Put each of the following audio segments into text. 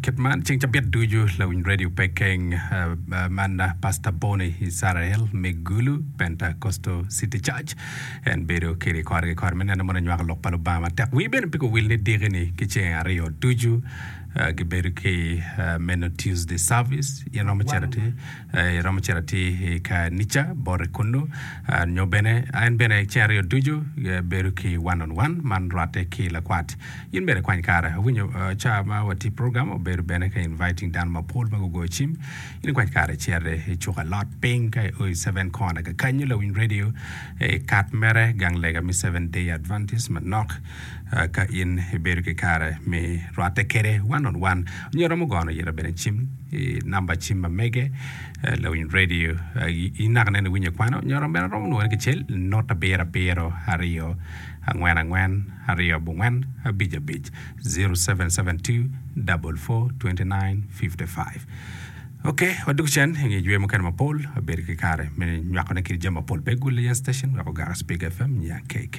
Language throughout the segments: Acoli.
Kit man ceng cabit ducu lawiny radio pe keng man Pastor Boni Isarael me Gulu Pentecostal City Church en bedo kiri kore ki kore me neno mono nywako lok pa Lubanga matek. Wi bene pe kuwil ni diki ni ki ceng aryo ducu gibedo ki meno Tuesday service in romo cito ti Iromo cito atir i kanica bote kunnu, nyo bene en bene ceng aryo ducu bedo ki one on one man rwatte ki lakwat. In bene kwany kare. Awinyo ca ma watye program obedo bene ka inviting dano mapol ma gugoyo cim. In ikwany kare icere i cuka lot piny ka i oi seven corner kakanyu lawiny radio i kat mere gang lega me seven day adventist manok. Ka in ibedo ki kare me rwatte kede one on one nyo iromo gono yito bene cim i namba cim ma mege lawiny radio i naka nene iwinyo kwano nyo iromo bene romo nwoene kicel not abiro abiro aryo angwen angwen aryo abongwen abic abic 0772 double four twenty nine fifty five Ok, wadok cen i nge jwe mukene mapol, wabedo ki kare me nywakone kiri jami mapol pe gul yan station wek ogaka Speak FM nya KK.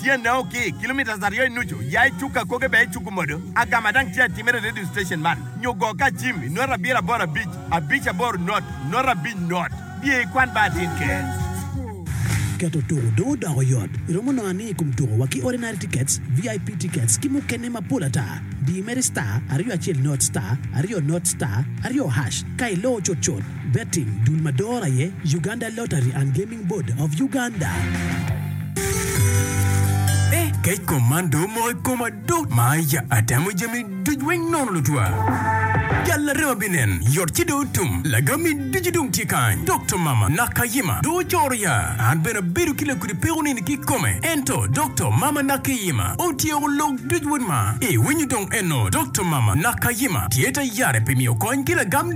Tyene o ki kilometres aryo i nucu, ya i cuk akoge bene icuku modo. Agama dang tye atimere i radio station man nyo go ka acim i nota abiro aboro abic, abic aboro not, nota abic not. Biye i kwan ba atin ker. Keto tuko dong odoko yot. Iromo nongo ani i kom tuko wa ki Ordinary Tickets, VIP Tickets ki mukene mapol ata. Di mere star, aryo acel not, star, aryo not, star, aryo hash ka iloo cutcut. Betting, dul ma doro aye Uganda Lottery and Gaming. Planning Board of Uganda. Eh kec kom man dong omoko i koma duu. Maya atemo jami duc weng nono lutwa. Gal arema binen yot ci dong otum. Lagami ducu dong tye kany. Dokta mama Nakayima dong ocoro ya. An bene abedo ki lakudi peko nini ki kome. Ento Dokta mama Nakeyima otyeko lok duc wod ma. Iwinyo dong eno Dokta mama Nakayima tye ta yare pi miyo kony ki lagam.